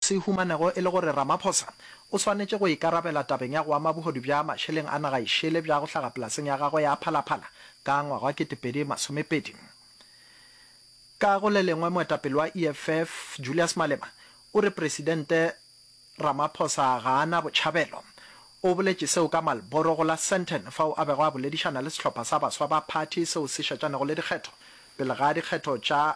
Se humanego e le gore Ramaphosa o swanetše go ikarabela tabeng ya go ama bohodu bja mašeleng a naga e šele bja go hlaga polaseng ya gagwe ya Phala Phala ka ngwaga wa 2020. Ka go le lengwe moetapele wa EFF, Julius Malema, o re Presidente Ramaphosa ga a na botšhabelo. O boletše seo ka Marlboro go la Sandton fao a bego a boledišana le sehlopha sa baswa ba phathi seo se šetšanego le dikgetho pele ga dikgetho tša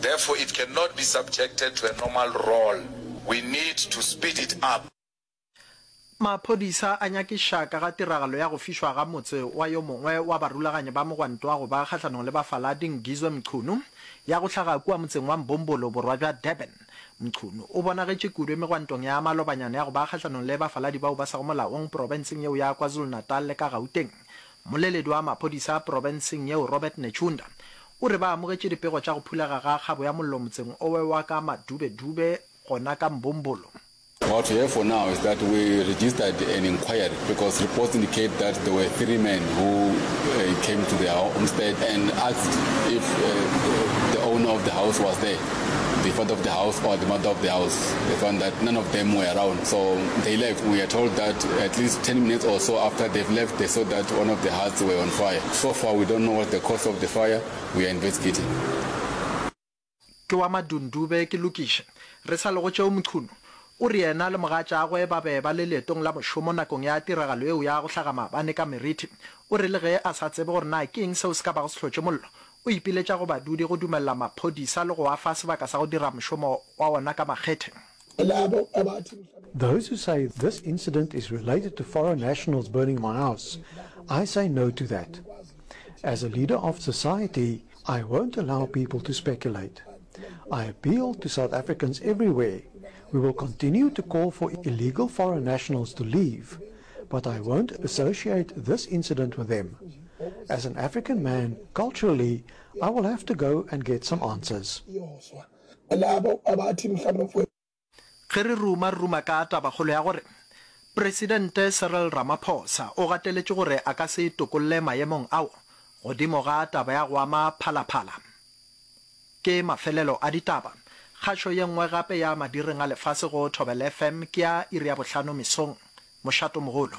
Therefore it can not be subjected to a normal roll, we need to speed it up. Maphodisa a nyakiša ka ga tiragalo ya go fišwa ga motse wa yo mongwe wa barulaganyi ba mogwanto wa go ba kgahlanong le bafaladi Ngizwe Mchunu ya go hlaga kua motseng wa Mbumbulu borwa bja Durban. Mchunu o bonagetše kudu megwantong ya malobanyana ya go ba kgahlanong le bafaladi bao ba sego molaong profenseng yeo ya KwaZulu-Natal le ka Gauteng Moleledi wa maphodisa porobenseng yeo Robert Netshiunda o re ba amogetše dipego tša go phulega ga kgabo ya mollo motseng owe wa ka Madube Dube gona ka Mbombolo. What we have for now is that we registered an inquiry because reports indicate that there were three men who came to their homestead and asked if the owner of the house was there. the father of the house or the mother of the house. They found that none of them were around, so they left. We are told that at least 10 minutes or so after they've left, they saw that one of the huts were on fire. So far, we don't know what the cause of the fire. We are investigating. Ke wa Madundube, ke lokiše. Re sa lego tšeo Mchunu o re yena le mogatšagwe ba be ba le leetong la mošomo nakong ya tiragalo eo ya go hlaga maabane ka Merithi. O re le ge a sa tsebe gore na ke eng seo se ka bago se hlotše mollo, o ipiletša go badudi go dumelela maphodisa le go a fa sebaka sa go dira mošomo wa wona ka makgethe. Those who say this incident is related to foreign nationals burning my house, I say no to that. As a leader of society, I won't allow people to speculate. I appeal to South Africans everywhere, we will continue to call for illegal foreign nationals to leave, But I won't associate this incident with them. As an African man, culturally, I will have to go and get some answers. Ge re ruma-ruma ka tabakgolo ya gore Presidente Cyril Ramaphosa o gateletše gore a ka se tokolle maemong ao godimo ga taba ya go ama Phala-Phala, Ke mafelelo a ditaba. Kgašo ye nngwe gape ya Madireng a Lefase go Thobela FM ke ya iri ya bohlano mesong. Mošato mogolo.